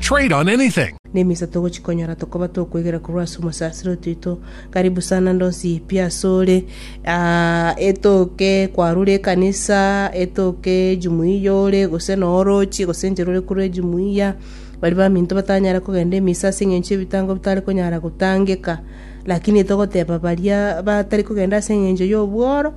Trade on anything! Nemisa togochikonyora tokoba tokwegera korwa ase omosasiro otoito. Karibu sana ndonsi pi asore. Ah, etoke kwarure ekanisa, etoke jumuiya yore, gose no orochie, gose nche rore korwa ejumuiya. Bari baminto batanyare kogenda emisa ase eng'encho ebitango bitare konyara gotangeka. Lakini togoteba baria batari kogenda ase eng'encho y'obworo,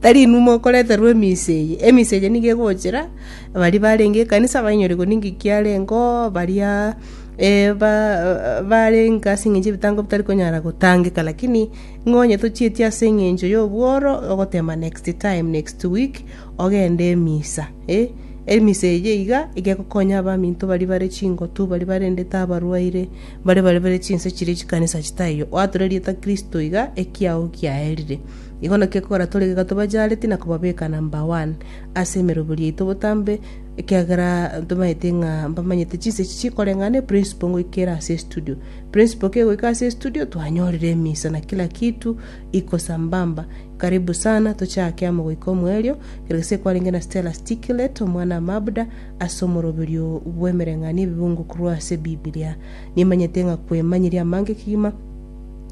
tari inwe mokoreterwa emisa eye, emisa eye nigo egochera baria barenge ekanisa bainyore gose ninki kiarengeo, baria eh, ba- barenge ase eng'encho ebitango bitari konyara gotangeka, lakini ng'a onye tochieti ase eng'encho ya obworo, ogotema next time, next week, ogende emisa, eh. Emisa eye iga, iga ekokonya abaminto baria bare chingotu, baria barendete abarwaire. Baria barebire chinse chiria chikanisa chitaiyo, oature rieta Kristo iga ekiao giaerire. Igo naki ekogera tore iga tobachaareti na kobabeka number one ase emeroberi yaito botambe, ekiagera tomaete ng'a mbamanyete chinse echi chikoreng'ana eprinciple ngoika ere ase estudio. Principle kegoika ase estudio twanyorire emisa na kila kitu iko sambamba. Karibu sana tochake amo goika omoerio, kera gese kwarenge na Stella Stiklet, omwana Mabda, Ase omoroberio bw'emereng'anio ebibungokorwa ase Bibilia, nimanyete ng'a kwemanyeria amange kegima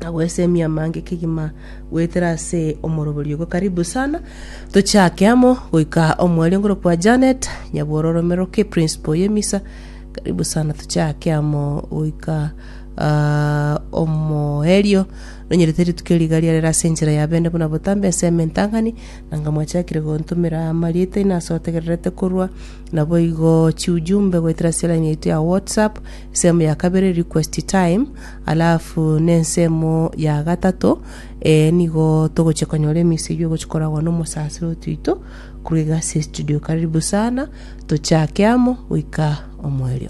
na gwesemia amange kegima goetera ase omoroberio ogo. Karibu sana, tochake amo goika omwerio ngoro kwa Janet, nyabworo romeroke principal y'emisa. Karibu sana, tochake amo goika ah, omoerio nonyerete rituko eriga riarera ase enchera ya bende buna botambe ensemo entang'ani Nanga mwachakire gontomera amarieta inwe ase otegererete korwa, naboigo chiujumbe goetera ase line yaito ya WhatsApp, ensemo ya kabere request time, alafu na ensemo ya gatato eh, nigo togochia konyora emesegi ogochia koragwa na omosasiro otoito korwa iga ase estudio. Karibu sana, tochake amo goika omoerio.